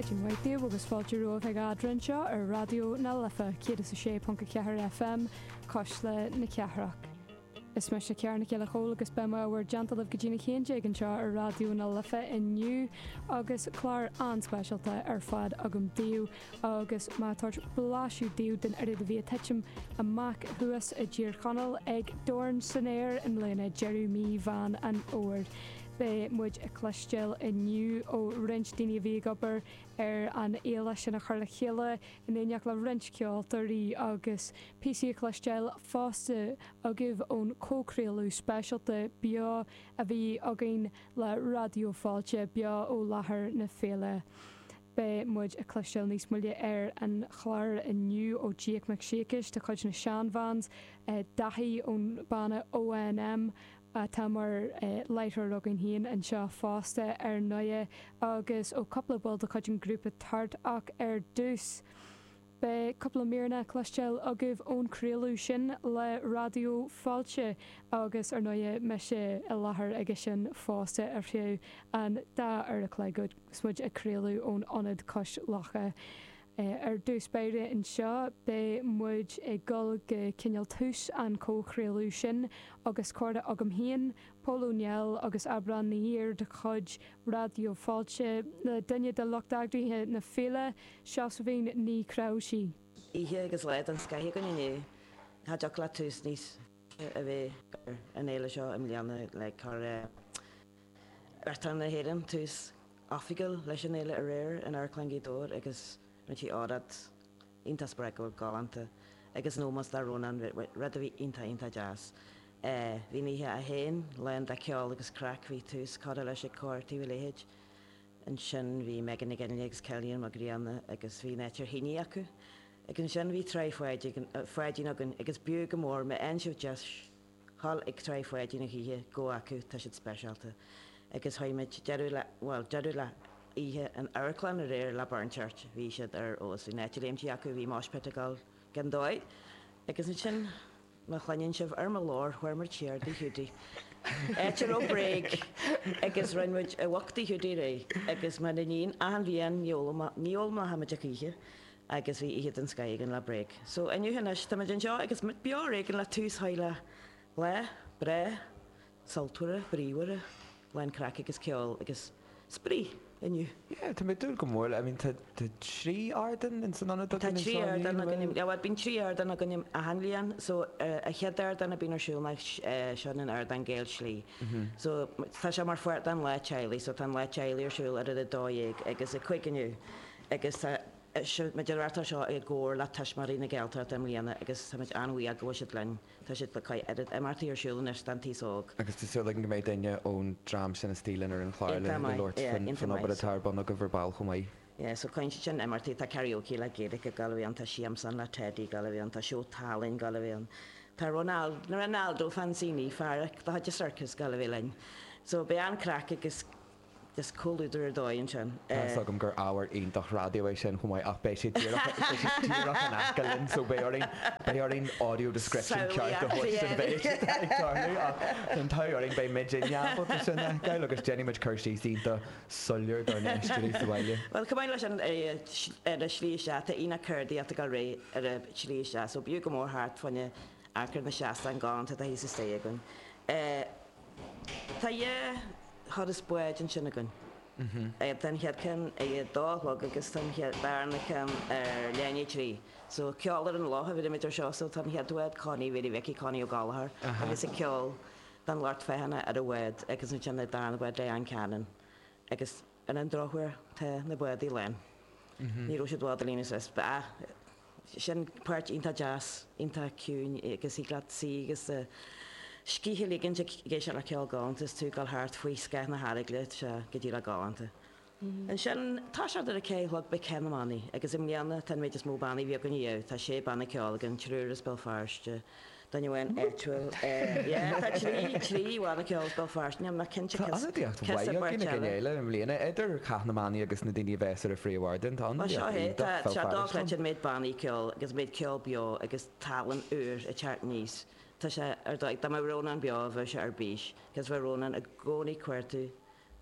Maidin mhaith daoibh agus fáilte romhaibh ag Eadra anseo ar Raidió na Life 106.4 FM, Cuisle na Cathrach. Is mise Ciara Nic Giolla Chomhaill agus beidh mé i bhur dteannta libh go dtí an haon déag anseo ar Raidió na Life inniu agus clár an-speisialta ar fad agam daoibh agus mé ag tabhairt blaiseadh daoibh den oiread a bhí ag titim amach thuas i dTír Chonaill ag Dorn san Aer i mbliana, deireadh mí Mheán an Fhómhair. Beidh muid ag cloisteáil inniu ó roinnt daoine a bhí ag obair ar an fhéile sin a chur le chéile, in éineacht le roinnt ceoltóirí, agus píosaí a chloisteáil fosta agaibh ón comhchraoladh speisialta beo a bhí againn le Raidió Fáilte, beo ó láthair na féile. Beidh muid ag cloisteáil níos moille ar an chlár inniu ó Jake Mac Siacais de chuid na Shan Vans, Daithí ón banna O&M, atá mar láithreoir againn féin anseo fosta ar ndóighe, agus ó chúpla ball de chuid an ghrúpa tart, ach ar dtús beidh cúpla míreanna le cloisteáil agaibh ón chraoladh sin le Raidió Fáilte, agus ar ndóighe, mise i láthair aige sin fosta ar feadh an dá uair a chloig agus muid ag craoladh ón Ionad Cois Locha. Ar dtús báire anseo, beidh muid ag dul go cineál tús an chomhchraoladh sin agus comhrá agam féin, Pól Ó Néill agus Aibreán Ní Aird de chuid Raidió Fáilte, le duine de lucht eagraithe na féile, Seosaimhín Ní Chreabhshaí. Oíche agus lá den scoith againn inniu. Cha dtiocfadh le tús níos fearr a bheith ar an fhéile seo i mbliana le cur Uachtarán na hÉireann tús oifigiúil leis an fhéile aréir in Amharclann Ghaoth Dobhair agus rinne sí óráid iontach spreagúil, galánta agus in ómós do Rónán, rud a bhí iontach, iontach deas. Bhí an oíche í féin lán de cheol agus craic, bhí tús curtha leis ag Cór Thaobh a' Leithid, ansin bhí Megan Nic Fhionnghaile agus Cillian Mac Grianna agus bhí an áit trí thine acu agus ansin bhí Trá Pháidín againn agus b'fhiú go mór, má fhaigheann sibh deis, dhul chuig Trá Pháidín a choíche gabh chucu tá siad speisialta agus tháinig deireadh le bhuel deireadh le hoíche an amharclann aréir le Burnchurch bhí siad arís bhí an áit ag léimtí acu bhí moshpit ag dul gan dóigh agus ansin má chluineann sibh ar mo ghlór chuaigh muid siar tigh Hiúdaí áit a raibh Bréag agus rinne muid a bhoc do Hiúdaí aréir agus mar a níonn achan bhliain ní fhoghl ní fhoghlaimeoidh muid a choíche agus bhí oíche den scoth againn lá bréag. So inniu anois, táimid anseo agus muid beo ar éigean le tús sháith le lá breá sultmhar, bríomhar, lán craic agus ceoil agus spraoi inniu. Yeah, tá mé ag dúil go mór le, I mean tá trí ardán in san ionad againn anseo inniu, bhfuil? Tá trí ardán againn, yeah, bhuel bíonn trí ardán againn achan bhliain, so an chéad ardán a bhíonn ar siúl ná seo an t-ardán Gael Slí, so tá sé mar pháirt den lá teaghlaigh, so tá an lá teaghlaigh ar siúl idir a 12 agus a 5 inniu. agus tá muid ag reáchtáil seo i gcomhar le Tuismitheoirí na Gaeltachta i mbliana agus táimid an-bhuíoch go bhfuil siad linn. Tá siad le cois oiread imeachtaí ar siúl anois don t-aos óg. agus tá súil againn go mbeidh duine ón dream sin istigh linn ar an chlár le labhairt faoin obair atá ar bun ag bhur baill chomh maith. Sa chaint sin imeachtaí tá karaoke le Gaeilge ag dul ann, tá siamsán le Teidí ag dul ann, tá seó tallainne ag dul ann, tá Ronaldo Fanzini, fear de chuid an Circus, ag dul linn. So beidh an-craic agus. Is comhluadar ar dóigh ansin é. Tá's agam gur ábhar iontach raidió é sin chomh maith ach beidh sé díreach beidh sé díreach in aice linn so beidh orainn beidh orainn audio description ceart a thabhairt don mhéid atá ag tarlú ach tá an t-ádh orainn beidh muidinne ábalta sin a fheiceáil agus déanfaidh muid cur síos iontach soiléir dár n-éisteoirí sa bhaile. Bhuel, chomh maith leis sin, ar an tslí isteach, tá aonach ceardaíochta ag dul ar aghaidh ar an tslí isteach, so b'fhiú go mór thart faoina achar na seastáin galánta atá thíos istigh againn. Tá dhá thuras báid ansin againn. Tá an chéad ceann ag a dó a chlog agus tá an darna ceann ar leath i ndiaidh a trí. So, ceol ar an loch a bheirimid air seo. So, tá an chéad bhád, Connie Mhary Mhicí Connie Ó Gallchóir agus ag ceol don lucht féachana ar an bhád agus ansin an darna bád, Diane Cannon agus. Ar an drochuair, tá na báid lán. Ní raibh siad i bhfad ag líonadh is is ba ea. Sin páirt iontach deas, iontach ciúin agus thig leat suí agus do scíth a ligint ag éisteacht le ceol galánta is tú ag dul thart faoi scáth na hEaragaile tá sé go díreach galánta. Ansin, toiseacht ar a ceathair a chlog beidh Cath na mBannaí agus i mbliana tá an méid is mó bannaí a bhí againn riamh, tá sé banna ceoil againn, triúr as Béal Feirste, duine amháin áitiúil é. Yeah, tá trí, trí bhanna ceoil as Béal Feirste ann, ach cinnte Tá céas, ionadaíocht céas mhaith ar againn beirt ag an eile. fhéile i mbliana, idir Cath na mBannaí agus na daoine a bheas ar an phríomhardán, tá ionadaíocht iontach Bhéal Feirste ann. Bhuel, seo é, tá, tá sé dochreidte an méid bannaí ceoil agus méid ceoil beo agus tallann úr ag teacht aníos, tá sé ar dóigh, dá mbeadh Rónán beo bheadh sé ar bís, 'cause bhí Rónán i gcónaí ag cuartú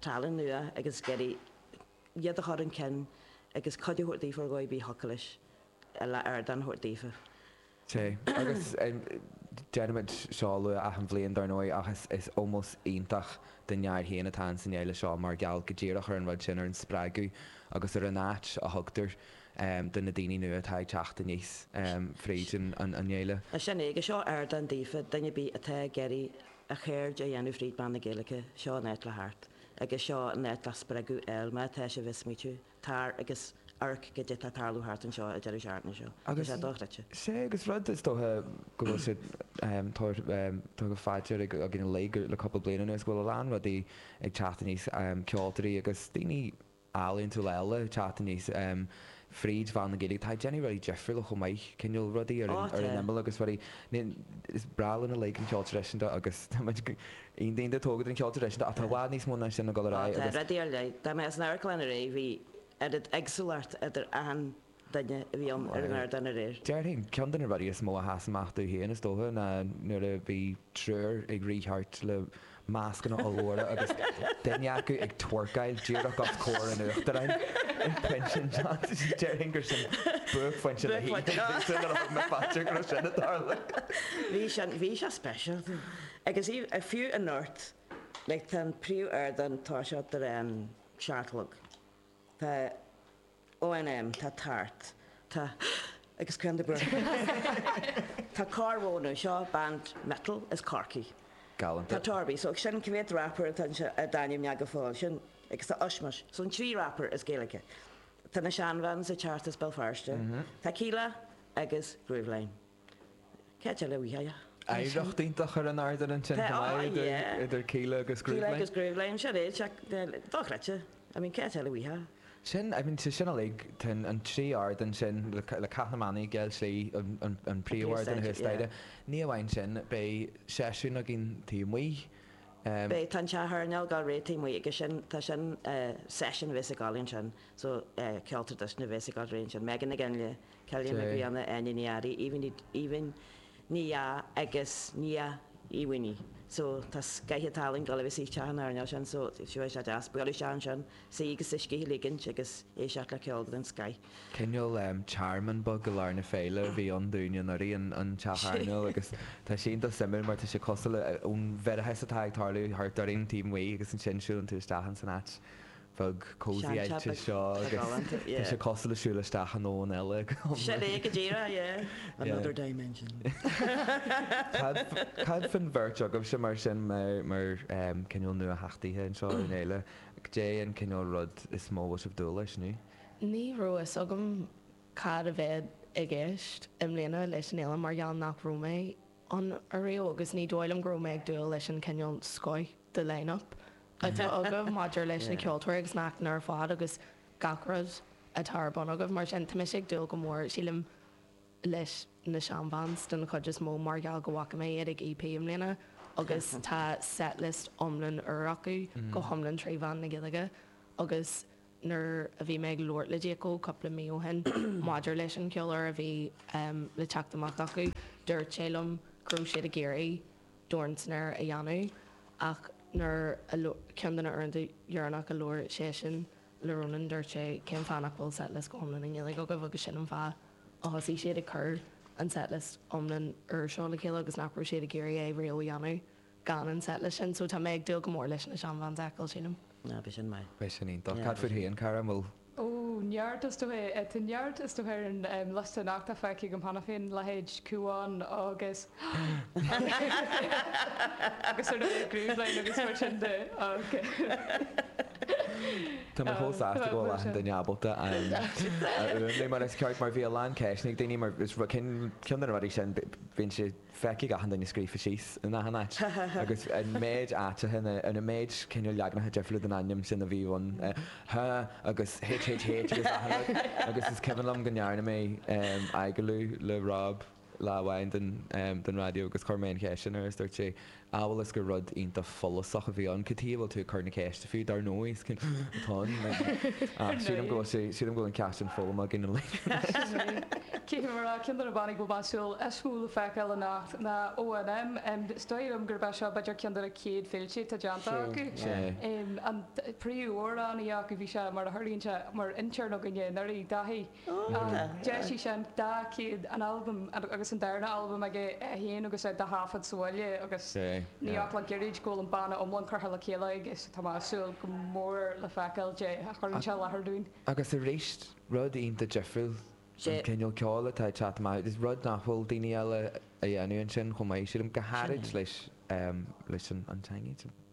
tallann nua agus ag iarraidh iad a chur chun cinn agus cuidiú a thabhairt daofa ar dhóigh ar bith a thiocfadh leis, a la ardán a thabhairt daofa. Sea. Agus déanaimid seo a lua achan bhliain, dar ndóigh, ach is ómós iontach don fhear é féin atá ann san fhéile seo mar gheall go díreach ar an rud sin, ar an spreagadh agus ar an áit a thugtar do na daoine nua atá ag teacht aníos fríd an fhéile. Sin é. Agus seo ardán daofa, duine ar bith atá ag iarraidh a cheird a dhéanamh fríd mheán na Gaeilge, seo an áit le theacht agus seo an áit le spreagadh a fháil, má tá sibh ag smaoitiú. tar agus amharc cad é tá ag tarlú thart anseo, a deir an searmanas seo. Tá sé dochreidte. Sea, agus rud, is dócha, go bhfuil siad tabhartha faoi dear againn uilig le cúpla bliain anuas, go bhfuil a lán rudaí ag teacht aníos, ceoltóirí agus daoine ealaíontúla eile ag teacht aníos fríd mheán na Gaeilge atá ag déanamh rudaí difriúla chomh maith, cineál rudaí ar an imeall agus rudaí, is breá linn uilig an ceol traidisiúnta agus táimid go. Ina ndaoine a tógadh le ceol traidisiúnta ach tá i bhfad níos mó ná sin ag dul ar aghaidh agus. Tá rud ar leith. Dá mbeadh san amharclann aréir bhí oiread éagsúlacht idir achan duine a bhí ann ar an ardán aréir. Déarfainn, ceann de na rudaí is mó a sheas amach domh féin is dócha ná nuair a bhí triúr ag rith thart le mascanna ollmhóra agus duine acu ag twerkáil díreach os comhair an Uachtaráin in Pension Johns. Déarfainn gur sin buaicphointe na hoíche. Bhí sé speisialta. Agus is fiú a ndúirt, like tá an príomh ardán atá seo i ndiaidh an seacht a chlog, tá ONM, tá tart, tá agus crann de burgers, tá Corr Mhóna, seo band metal as Corcaigh. Galanta. Tá Torby, so sin cé mhéad rapper atá anseo a d'ainmnigh mé go fóill, sin agus tá Ushmush, so an trí rapper as Gaeilge. Tá na Shan Vans ag teacht as Béal Feirste, tá Kíla agus Grooveline. Cad é le bhfuil a. oidhreacht iontach ar an ardán ansin, tá link idir Kíla agus Grooveline. Kíla agus Grooveline, sin é, dochreidte, I mean cad é le bhfuil a. Sin, I mean sé sin uilig, tá an trí ardán sin le Cath na mBannaí, Gael Slí, an príomhardán thuas staighre, ní amháin sin, beidh seisiún againn taobh amuigh, beidh, tá an teach airneáil díreach taobh amuigh agus sin, tá sin session a bheas ag gabháil ansin, so ceol traidisiúnta a bheas ag gabháil thríd ansin, Megan Nic Fhionnghaile, Clíona Nic Grianna, Áine Ní Fhearraigh, Aoibhinn Ní Dheá agus Nia Ní Bheirn. So tá scoth an talainn go léir istigh sa teach airneáil sin so seo é sé deas buail isteach ansin suí agus do scíth a ligint agus éisteacht le ceol den scoth. Cineál tearmann beag i lár na féile a bhí ann dúinne anuraidh an teach airneáil agus tá sé iontach suimiúil mar tá sé cosúil le an mhireadas atá ag tarlú thart orainn taobh amuigh agus ansin siúlann tú isteach in san áit bheag cosy te seo agus tá sé cosúil le siúl isteach i ndomhan eile go hiomlán. Sin é go díreach, yeah. Another dimension. Cad faoin bheirt agaibhse mar sin, mar cineál nuatheachtaithe anseo ar an fhéile, cad é an cineál rud is mó a bhfuil sibh ag dúil leis, nó? Ní raibh fhios agam cad a bheadh i gceist i mbliana leis an fhéile mar gheall nach raibh mé ann ariamh agus ní dóigh liom go raibh mé ag dúil leis an cineál scoth de line-up atá agaibh maidir leis na ceoltóirí agus na hacmhainní ar fad agus gach rud atá ar bun agaibh. Mar sin, tá mise ag dúil go mór, sílim, leis na Shan Vans den chuid is mó mar gheall go bhfaca mé iad ag EP i mbliana agus tá set-list iomlán úr acu, go hiomlán trí mheán na Gaeilge. Agus nuair a bhí mé ag labhairt le Jake Óg cúpla mí ó shin maidir leis an cheol úr a bhí le teacht amach acu, dúirt sé liom go raibh siad ag iarraidh dornsnare a dhéanamh ach nuair a ceann de na uaireanta dheireanach a labhair seisean le Rónán dúirt sé cén fáth nach bhfuil setlist go hiomlán i nGaeilge agaibh agus sin an fáth a thosaigh siad ag cur an setlist iomlán úr seo le chéile agus nach raibh siad ag iarraidh é riamh a dhéanamh gan an setlist sin so tá mé ag dúil go mór leis na Shan Vans a fheiceáil sílim. Ah, b'shin maith. B'shin iontach. Cad faoi thí an cara? An bhfuil. Ó, neart is dócha. Tá neart is dócha ar an liosta nach tá feicthe agam cheana féin, leithéid Cúán agus agus ar ndóigh Grooveline agus mar sin de. Tá mé chomh sásta go bhfuil achan duine ábalta a fhuaimniú mar is ceart mar bhí a lán ceisteanna ag daoine mar is rud cinn, ceann de na rudaí sin bíonn siad, Feicfidh achan duine scríofa síos in achan áit agus an méid áiteacha ina an méid cineál leaganacha difriúla den ainm sin a bhí ann, H agus HHH agus achan rud agus is cuimhin liom go ndearna mé agallamh le Rob lá amháin don raidió agus chuir mé an cheist sin air agus dúirt sé amhail is gur rud iontach follasach a bhí ann, cad chuige a bhfuil tú ag cur na ceiste fiú, dar ndóigh, is cinnte atá ann, ach sílim go bhfuil sé, sílim go bhfuil an ceist sin foghlamtha againn anois. Cé go raibh ceann de na bannaí a bhfuil mé ag súil is mó le feiceáil anocht ná ONM, is dóigh liom gurb é seo b'fhéidir ceann de na chéad féilte atá déanta acu. An príomh-amhránaí acu, bhí sé, mar a tharlaíonn sé, mar intern againne anuraidh, Daithí. D'eisigh sé an dá chéad an albam agus an darna albam aige é féin agus é dá thaifead sa bhaile agus níl ach le gairid go bhfuil an banna iomlán curtha le chéile aige so tá mé ag súil go mór le feiceáil caidé a chuireann sé i láthair dúinn. Agus arís, rud iontach difriúil an cineál ceoil atá ag teacht amach agus rud nach bhfuil daoine eile a dhéanamh ansin chomh maith, sílim, go háirid leis an teanga.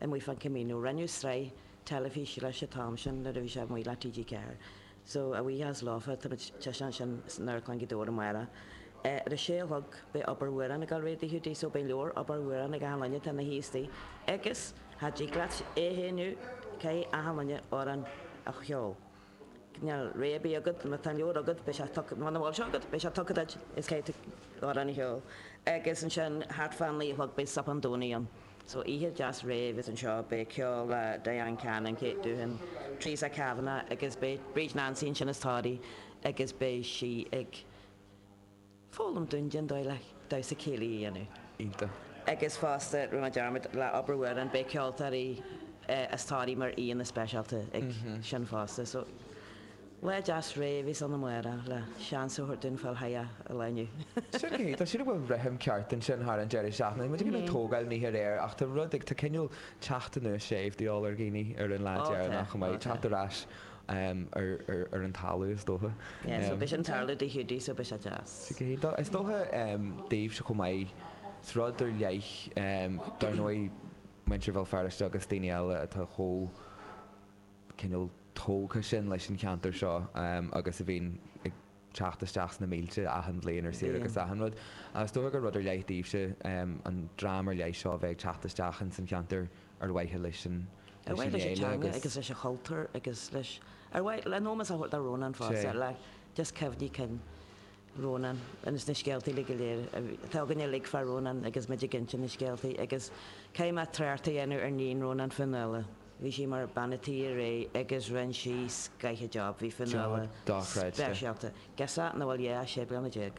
amuigh ar an Camino rinneadh sraith teilifíse leis an t-am sin nuair a bhí sé amuigh le TG4 so buíochas leofa tá muid ag taispeáint sin san Amharclann Ghaoth Dobhair amárach ar a sé a chlog beidh Abair Amhrán ag dul ar aghaidh i dTigh Hiúdaí so beidh leabhar Abair Amhrán ag achan duine tá na haostaí agus cha dtig leat é a shéanadh caithfidh achan duine amhrán a cheol. chan fhuil rogha ar bith agat, má tá an leabhar agat, muna bhfuil sé agat, beidh sé tugtha duit, is caithfidh tú amhrán a cheol, agus ansin thart fá naoi a chlog beidh sop an domhain ann, so oíche deas réidh agus anseo beidh ceol le Diane Cannon, Kate Doohan, Teresa Kavanagh agus beidh Bríd Nansaí ansin as Toraigh agus beidh sí ag. foghlaim dúinn den dóigh le damhsa céilí a dhéanamh. Agus fosta, rinne mé dearmad, lá breithe Rónáin, beidh ceoltóirí as Thoraí mar aíonna speisialta ag sin fosta. So, lá deas réidh a bheas ann amárach le seans a thabhairt dúinn fáil chuige an Luan. Sin é, tá sé go bhfuil rithim ceart ansin thar an deireadh seachtaine. Muid a bhíonn ag tógáil go réidh ach tá rud ag, tá cineál teacht anuas séimh de dhíobháil ar dhaoine ar an lá deireanach chomh maith, teacht ar ais em, ar, ar, ar an talamh, is dócha. Yeah, so Em. b'shin a tharla do Hiúdaí, so bhí sé deas. Sea, cé hí do? Is dócha, em, daoibhse chomh maith, is rud ar leith, em, dar ndóigh, muintir Bhéal Feirste agus daoine eile atá chomh, cineál, tógtha sin leis an cheantar seo, em, agus a bhíonn ag, teacht isteach sna mílte achan bhliain ar saoire agus achan rud. Is dócha gur rud ar leith daoibhse, an dream ar leith seo, a bheith ag teacht isteach ins an cheantar ar mhaithe leis an Ar mhaithe leis an fhéile teanga agus. agus leis an chultúr agus leis, ar mhaithe le hómós a thabhairt do Rónán fosta, Sea. le just cuimhní cinn Rónáin agus na scéalta uilig go léir a bhí, atá againne uilig fá Rónán agus muid ag inse na scéaltaí agus caithfidh mé trácht a dhéanamh ar níon Rónáin Fionnuala, Bhí sí mar bhean a' tí aréir agus rinn sí scoith job. Bhí fíor. Na Job dochreidte. speisialta. Girseach nach bhfuil yeah ach sé bliana déag.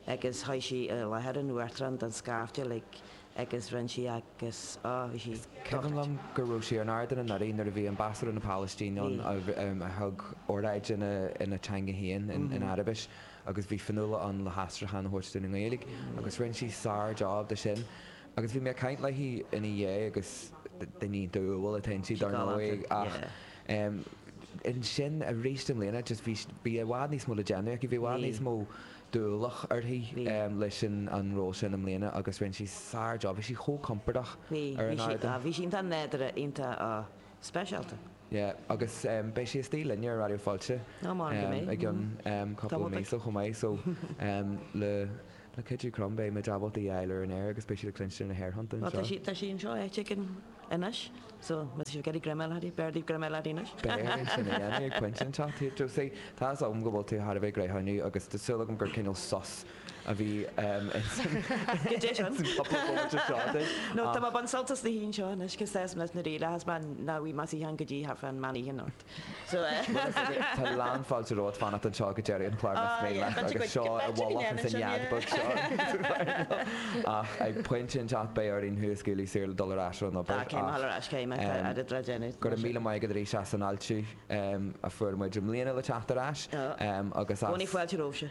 Agus sheas sí i láthair an uachtaráin don scaifte like agus rinn sí agus oh bhí sí Cuimhin liom dochreidte. go raibh sí ar an ardán anuraidh nuair a bhí Ambasadóir na Palaistíne ann Bhí. um a thug oráid ina ina teanga féin, in in Araibis, agus bhí Fionnuala ann le haistriúchán a thabhairt dúinn i nGaeilge. Agus rinn sí sár job de sin. Agus bhí mé ag caint léi ina dhiaidh agus duine umhal atá inti dar ndóigh ach em ansin aríst i mbliana just bhí bhí i bhfad níos mó le déanamh aici, bhí i bhfad níos mó d'ualach uirthi em leis an an ról sin i mbliana agus rinne sí sár jab, bhí sí chomh compordach ar an ardán. Bhí sí iontach nádúrtha, iontach speisialta. Yeah agus em beidh sí istigh linn ar Raidió Fáilte em i gcionn em cúpla míosa chomh maith so em le Le cuidiú Croim beidh muid ábalta í a fháil ar an aer agus beidh siad ag cluinstin na haerthonnta anseo. Bhuel, tá sí anseo áit éigin anois, so must have got a greim a fháil uirthi, b'fhearr daoibh greim a fháil uirthi anois. B'fhearr sin a dhéanamh, ag pointe inteacht, sea. Josie, tá's agam go bhfuil tú thar a bheith gnóthach agus tá súil agam gur cineál sos a bhí ins an cúpla bomaite seo duit. No, tá mé ag baint sult as an suíochán seo anois, chomh deas, mé ag relaxáil, as mé nach mbeidh mé i suíochán go dtí half an meán oíche anocht. Tá lán fáilte romhat fanacht anseo go deireadh an chláir más mian leat agus suí i bhfolach ins an nead beag seo ach ag pointe inteacht beidh orainn thú a scaoileadh saor le dul ar ais ar an obair ach go raibh míle maith agat arís as an fháilte a fuair muid i mbliana le teacht ar ais agus as. Cinnte fáilte romhaibhse.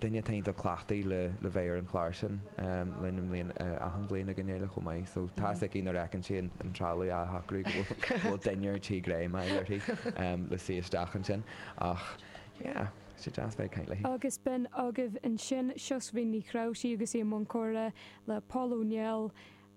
duine atá iontach cleachtaithe le le bheith ar an chlár sin linn i mbliain achan bhliain ag an fhéile chomh maith so tá fhios aici nuair a fheiceann sí an an trealamh á shocrú go bhfuil go bhfuil duine ar tí greim a fháil uirthi le suí isteach ansin ach yeah sé deas bheith ag caint léi. Agus b'in agaibh ansin Seosaimhín Nic Rabhartaigh agus í i mbun comhrá le Pól Ó Néill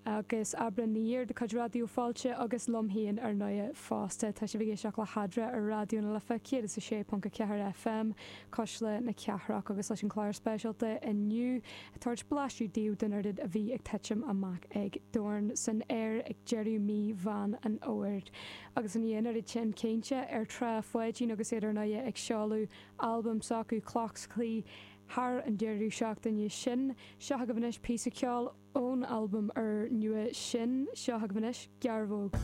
agus Aibreán na dhiaidh, de chuid Raidió Fáilte, agus liom féin, ar ndóighe, fosta. Tá sibh ag éisteacht le hEadra ar Raidió na Life 106.4 FM, Cuisle na Cathrach, agus leis an chlár speisialta inniu, ag tabhairt blaiseadh daoibh den oiread a bhí ag titim amach ag Dorn san Aer ag deireadh mhí Mheán an Fhómhair. Agus i ndiaidh an oiread sin cainte ar Thrá Pháidín agus iad, ar ndóighe, ag seoladh albam s'acu, Cloch 's Claí, thar an deireadh seachtaine sin. Seo chugaibh anois píosa ceoil ón albam úr nua sin. Seo chugaibh anois Gearbhóg.